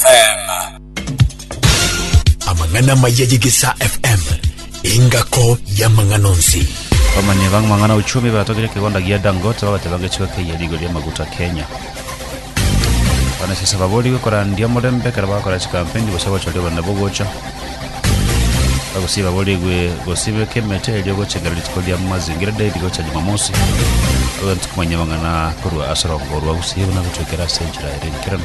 FM. Amang'ana amaya y'Egesaa FM, engako y'amang'ana onsi. Bamanye bang' mang'ana uchumi batogire kigonda gia Dangote babateba ngechiko keiyo rigo ria maguta Kenya. Banasiasa baborigwe korandia omorembe ekero bagokora chikampeni gose gochoria obonene bogocha. Abagusii baborigwe gosibeka emete erio gochengera rituko ria Mazingira Day rigocha Jumamosi. Ogontwa komanya amang'ana korwa ase orongo rw'Abagusii buna gotwekera ase enchera ere enkeranu.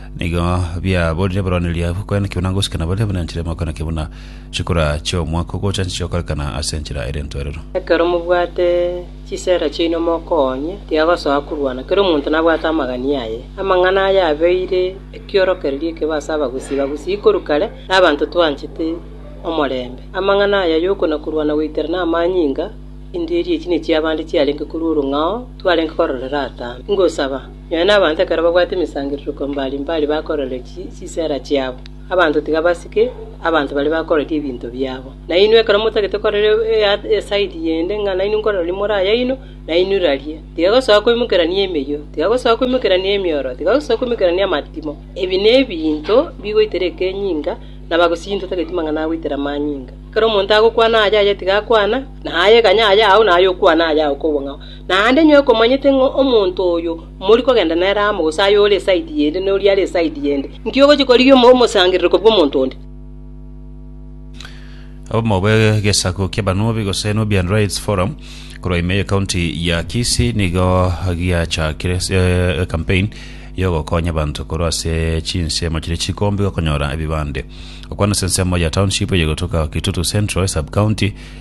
Nigo biaborire boroneria kwena kebuna ngosika na baria banyanchire amoko na kebuna chikura chi'omwaka ogochancha chigokorekana ase enchera ere entwerero. Ekero mobwate chisera chiaino mokoonye, tiagosoa korwana, kera omonto nabwate amagani aye. Amang'ana aya abeire ekiorokererio ekebe ase abagusii bagusii korwa kare, na abanto twanchete omorembe. Amang'ana aya y'okona korwana goikerana amanyinga, Endiiri echi nechi'abande chiarenge korwa orong'ao twarenge kororera atambe. Ingosaba. Nonya nabanto ekero babwate emesangerererio mbari mbari bakorerire chisera chiabo, abanto tiga basike abanto baria bakoreti ebinto biabo. Na inwe ekero motagete korera esaidi yende ng'a nainwe nkorera riria more ayaino, nainwe raria. Tiga gosoa koimokerania emeyio, tiga gosoa koimokerania emioro, tiga gosoa koimokerania amatimo. Ebi nebinto bigoitera ekenyinga, na bagosii ntotageti mang'ana agoitera amanyinga. Ekero omonto agokwana aya aya tiga akwana, na aya ekanya aya ao na aya okwana aya ao kobua ng'a. Naende inwe komonyete ng'a omonto oyo mori kogenda nere amo, gose aye ore esaidi yende, na oria are esaidi yende, inki ogochia korigia omosangererekwa bw'omonto onde? Obomo bw'egesaku ki'abanubi gose Nubian Rights Forum korwa ime y'ekaunti ya Kisii nigo giachakire eh, campaign yogokonya abanto korwa ase chinsemo chiria chikombe gokonyora ebibande. Okwana ase ensemo ya township eyegotoka Kitutu Central esub-county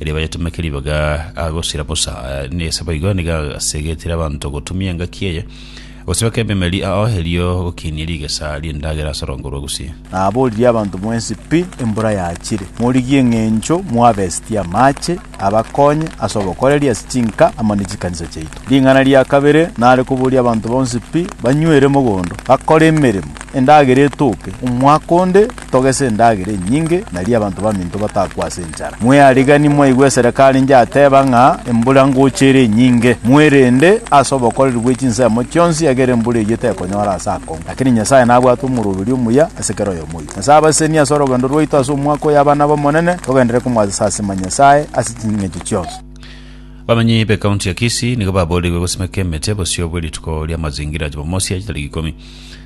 riaba yatumeke ribaga agosira bosa, na ase boigo nigo asegetire abanto gotumia engaki eye, gosibeka ememeri ao, erio gokinia rigesa ri'endagera ase orongo rwa Gusii. Naboririe abanto mwensi pi embura yachire, morigie eng'encho mwabesetie amache abakonye ase obokoreri ase chinka amo ne chikanisa chiaito. Ring'ana ria kabere nare koboria abanto bonsi pi banywere mogondo, bakore emeremo, endagera etooke omwaka onde, Togese endagera enyinge, nario abanto baminto batakwe ase enchara. Mweariganie mwaigwe esereko arinche ateba ng'a embura ngocha ere enyinge. Mwerende ase obokoreri bwe chinsemo chionsi, ekiagera embura eyio tekonyora ase akong'u. Lakini Nyasae nabwate omoroberio omuya ase kera oyomo oito. Nyasae abasesenie ase orogendo rwaito ase omwaka oyo abana b'Omonene, togenderere komwasesa ase Manyasae ase ching'encho chionsi. Abamenyi b'ecounty ya Kisii nigo baboorigwe gosimeka emete bosio bwe rituko ri'amazingira Jumamosi ya tariki ikomi.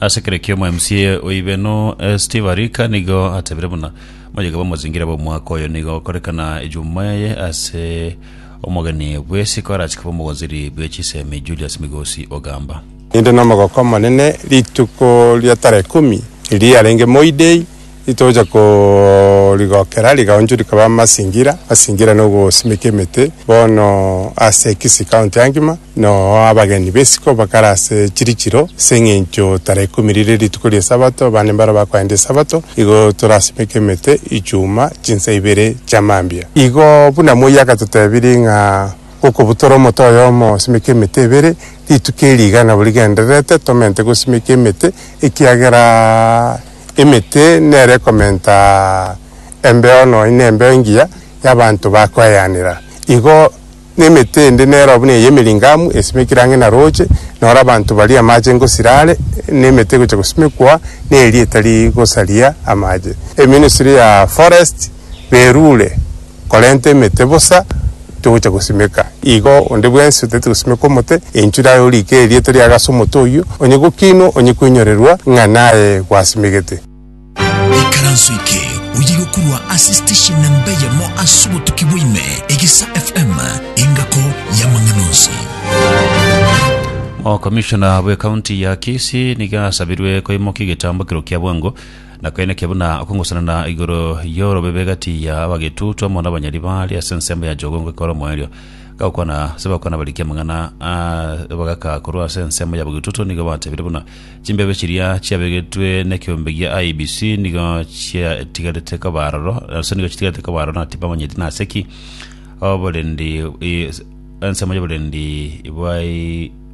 Ase kera ekioma MCA o Ibeno eh, Steve Arika nigo atebire buna moyega bamozingire b'omwaka oyo nigo okorekana ejuma eye ase omogeni bw'esiko arache koba omogonziri bwe chisemi Julius Migosi Ogamba. Ninde nomogoko omonene rituko ria tara ekumi riria yarenge Moiday Titocha korigokera, rigaunchu rikaba amasingira, amasingira na ogosimeka emete. Bono ase Kisii County angima noo abageni b'esiko bakare ase chirichiro ase eng'encho tarehe ikomi rire rituko ri'Esabato, abande mbaro bakoenda Esabato. Igo torasimeke emete ichuma chinsa ibere chia mambia. Igo buna moi agatotebirie ng'a gokobutora omote oyomo osimeke emete ebere, rituko eri iga nabo rigendererete tomente gosimeka emete ekiagera emete nere komenta embeo nonya ne embeo engiya ya abanto ba koeyanera. Igo ne emete ende nero buna eye emiringamu esimekire ang'e na roche, noro abanto baria amache ngosira are, ne emete egocha gosimekwa ne eria etari gosaria amache. Eministry ya Forest berure. korenta emete bosa togocha gosimeka. Igo onde bwensi otaete gosimeka omote, enchure aye oriike erieta riaye ase omote oyio, onye gokinwa, onye kwenyorerwa ng'a naye gwasimegete. Ikaranso eke oye gokorwa ase station namba eyemo ase obotuki bwaime, Egesa FM, engako y'amang'ana onsi. Okomishona bw'ekaunti ya Kisii nigo asabirwe koimokia egetambo ekero kia bwango Na koineke buna okongosanana igoro y'orobebe egati ya abagetutu amo n'abanyari baria ase ensemo ya Jogongo ekore omoerio, gagokwana ase bagokwana barikia amang'ana aa ebagaka korwa ase ensemo y'abagetutu nigo batebire buna chimbebe chiria chiabegetwe nekeombe gia IEBC nigo chiatigarete koba aroro ase nigo chitigarete koba aroro na tibamanyeti nase ki oborendi ensemo y'oborendi bwa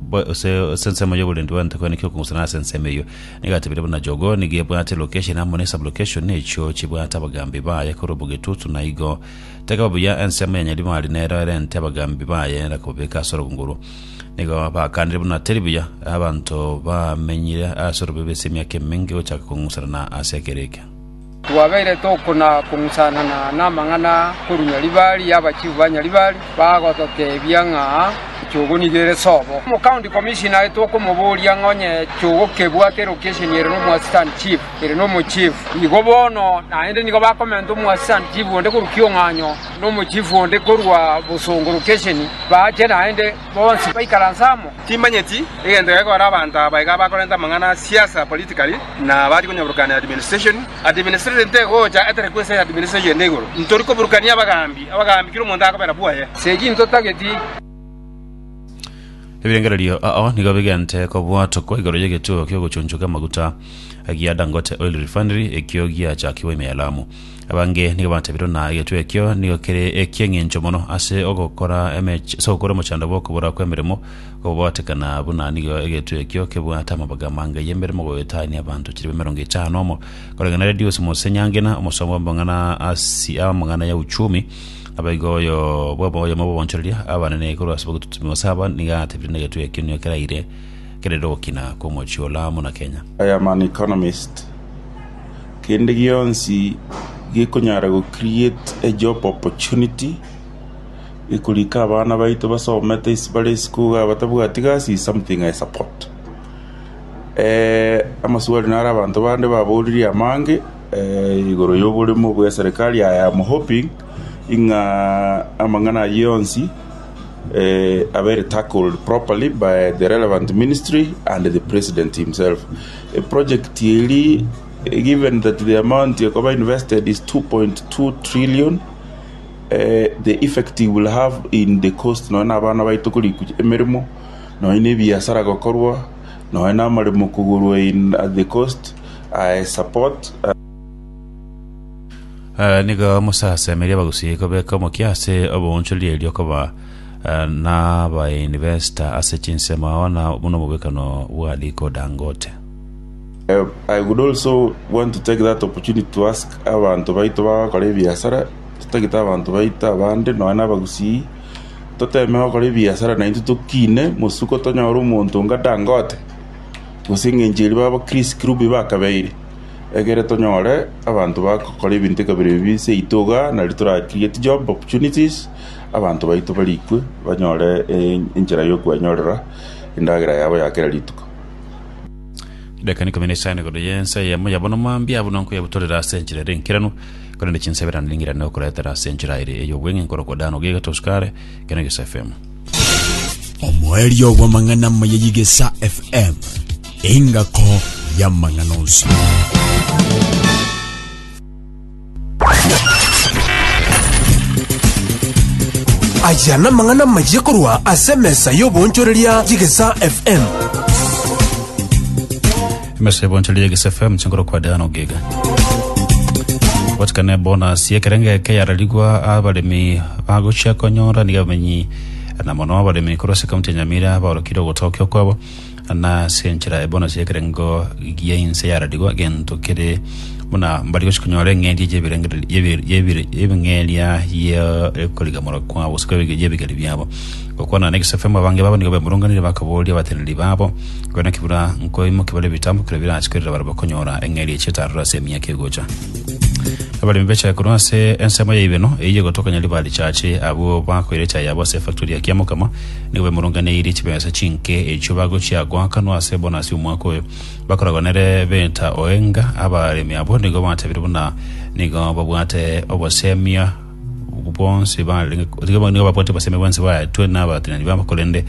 Bo- ase ase ensemo y'oborendi bw'ente kwene ki okogusana ase ensemo eyio nigo atebire buna jogoo nigo ebwate location amo ne sublocation echio chibwate abagambi baye korwa obogetutu na igo tekaba buya ensemo ya nyaribari nero ere ente abagambi baye era kobabeka ase orogongo orwo nigo bakanire buna teri buya abanto bamenyire ase orobebe ase emiaka emenge gochaka kong'usana na ase ekero eke Twabeire tokona-kong'usanana namang'ana korwa Nyaribari, abachifu ba Nyaribari bagototebia ng'a echogo nigo ere sobo. Omocounty commissioner tokomoboria ng'a onye echogo kebwate location ere nomoassistant chief ere nomochief, igo bono naende nigo bakomenta omoassistant chief onde korwa Kiong'anyo nomochief onde korwa Bosongo location, bache naende. Bonsi baikaranse amo. Timanyeti egento gekora abanto aba iga bakorenta amang'ana a siasa, politically, na bari konyaburukania administration. Administration tegocha etere kwesaya administration ende igoro. Ntori koburukania abagaambi, abagaambi kera omonto akobera bwaye. Sechi ntotageti. Ebirengererio ao nigo bigente kobwatokwa igoro y'egetuo ki'ogochunchuka amaguta gia Dangote Oil Refinery ekio giachakigwa ime ya Lamu. Abange nigo batabire ng'a egetwe ekio nigo kere eki'eng'encho mono ase ogokora emech- ase ogokora omochando bw'okobora kw'emeremo kobagoatekana, buna nigo egetwe ekio kebwate amabaga amange y'emeremo goetania abanto chilifu emerongo etano na omo, koreng'ana na Redius Mose Nyangena, omosomba bw'amang'ana asi amang'ana ya uchumi, abaigo oyo bw'obo- oyomo bw'obonchoreria abanene korwa ase obotutubi gose aba, nigo atabire ng'a egetwe ekio nigo keraire keraire ogokina kw'omochie o Lamu na Kenya. Ironman Economist. Kende gionsi gekonyara go create a job opportunity gekorika abana baito basomete ase bare esukuru abatabwati gasi is something I support. Amaswali naro abanto bande baboririe amange igoro ya oboremu bwa eserekari I am hoping ng'a amang'ana ayio onsi abere tackled properly by the relevant ministry and the president himself. Eprojekti eria given that the amount ekoba invested is 2.2 trillion, the effect it will have in the cost nonya na abana baito korikwa emeremo, nonya na ebiasara gokorwa, nonya na amaremo kogorwa in at the cost, support. Nigo mosasemerie abagusii kobeka omokia ase obong'unchori erio koba eh, nabainvesta ase chinsemo ao na buna omobekano bwa riko Dangote. Eh, I would also want to take that opportunity to ask abantu baito bagakora ebiasara totagete abantu baito abande nonya na abagusii toteme gokora ebiasara naintwe tokine mosuko tonyore omonto nga Dangote gose eng'encho eria baba Chris Kirubi bakabeire egere tonyore abanto bagokora ebinto ekabere ebi seito iga nario tora create job opportunities Abanto baito barikwe banyore enchera y'okwenyorera endagera yabo ya kera rituko. Edaika n'ikomi na isano igoro y'ensa eyemo yabo nomambia buna nkoyebutorera ase enchera ere enkeranu, korende chinsebera niring'irane okoretera ase enchera ere ey'obweng'e nkorokwa dano gie getosukare ekero egesa FM. Omoerio bw'amang'ana amaya y'egesa FM, engako y'amang'ana onsi. Aya namang'ana amayia korwa ase emesa y'oboonchoreria y'Egesaa FM. emesa ebonchori yegese fm chingoro kwa diana ogiga gotikana bonus yekerenge eke yararigwa abaremi bagochia konyora niga abamenyi na mono abaremi korwa ase kaunti ya nyamira baorokire ogotokio kwabo na ase enchera eye bono y'ekerengo gia inse yaradigwa, egento kere buna mbari gochia konyora eng'eria y'ebirengererio- y'ebi- y'ebi- y'ebing'eria y'e- y'okorigamora kwabo, gose kwa- y'ebigeri biabo. Gokwana na egesaku ekiamo abange babo nigo bemurunganire bakaboria abateneneri babo, Nkoyo naki buna nkoimoke bare ebitambo kerio birache korera barabwo konyora eng'eria echi etarure ase emiaka egocha? Abaremi bechaya korwa ase ensemo ya Ibeno, eyio egotokanya riba richache, abwo bakoira echae yabo ase efactori ya Kiamokama, Nigo bemurunganeirie chibesa chinke echio bagochia goakanwa ase ebonasi omwaka oyo. Bakoragwa nere beta oenga, abaremi abwo nigo batebirie buna nigo babwate obosemiaa bwonsi bare nigo babwate obosemi bwonsi baetwe n'abatenani babo korende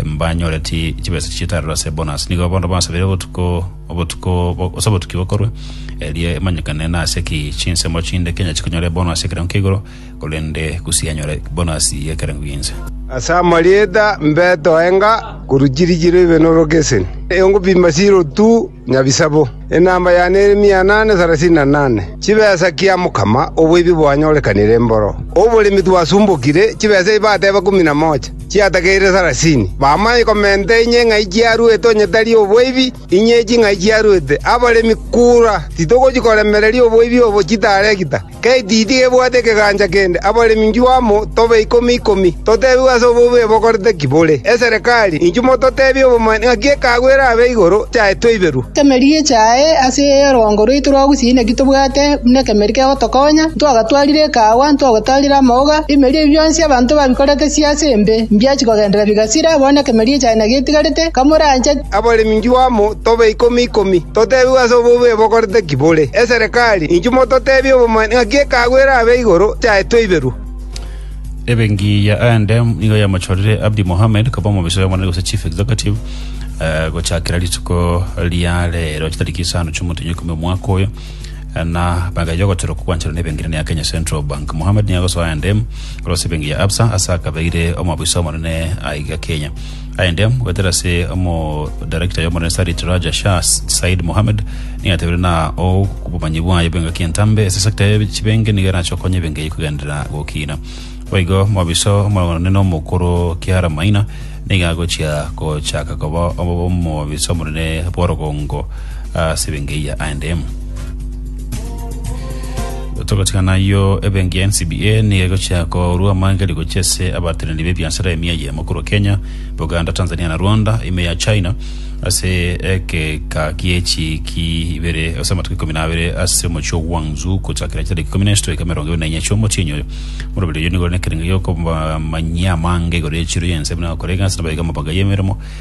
mbanyoreti chibesa chitarero ase ebonasi nigo bono basabire obotuko obotuko ase obotuki bokorwa erie emanyekane nase ki chinsemo chinde Kenya chikonyora ebonasi ekero nkeigoro korende gose anyore bonasi y'ekerengo gi'ense. Ase amarieta mbeto enga korwa chirichiro ibe norokeseni, ongopima chirotu nyabisabo, enamba yane ere mia anane sarasini na nane. Chibesa kia mokama oboibi bwanyorekanire mboro oboremi twasumbokire, chibesa ebi bateba ikomi na mocha chiatakeire sarasini. Bamanye komenta inye ng'ai chiaruete onye tari oboibi, inye echi ng'ai chiaruete abaremi kura, titogochi koremereria oboibi obo chitaregita. Ketiti gebwate ekegancha kende, abaremi inchuo amo tobe ikomi ikomi, totebigwe ase obobe bokorete ki bore. Eserekari, inchuo mototebie obobe ng'aki ekaagu erabe igoro yaye toiberwe. Emeri echae ase orongo rwaito rwa gusii naki tobwate buna ekemeri kegotokonya, ntwagatwarire ekaawa, ntwagotarire amauga, ebimeri ebi bionsi abanto babikorete siase embe, mbiachi kogenderera bigasira, bono ekemeri echae nagetigarete, kamorancheti. Abaremi inchuo amo tobe ikomi ikomi, totebigwe ase obobe bokorete ki bore. Eserekari, inchuo mototebie obomanene ng'aki ekeago erabe igoro chiaetwe iberwe. Ebengiya aende nigo yamachorire Abdi Mohamed koba omomiso y'omonene gose Chief Executive eh, gochakera rituko ria rero chitariki isano chi'omotenyo ikomi omwaka oyo eh, na magaye y'ogoterwa kogwancherwa n'ebengirani ya Kenya Central Bank. Mohamed nigo agosoa aende korwa ase ebengi ya Absa ase akabeire omobiso omonene aiga Kenya. Aende mogatera ase omodarekita y'omonene Sarit Raja Shah Said Mohammed nigo yatebire na o obomanyi bwaye bw'engaki entambe ase sector ya chibenge nigo erache okonya ebenge eyio kogenderera gokina. Boigo mobiso omonene omokoro Kiara Maina nigo agochia gochaka koba omobiso omonene bw'orogongo ase ebenge eyio aende. Togotigana ayio, ebenki ya NCBA nigo egochia korwa amangeri gochia ase abateneni b'ebiasara emia eyemo korwa Kenya, Buganda, Tanzania na Rwanda, ime ya China ase egeka gie chiiki ibere ase amatuko ikomi na abere ase omochie o Guangzhou gochakera chitariki ikomi na isatu goika emerongo ebere na inya chia omotienyi oyo. Moroberi oyio nigo ore nekerengo gi'okomanyia amange igoro ye chiro y'ense buna gokorega ase nabaebi amabanga y'emeremo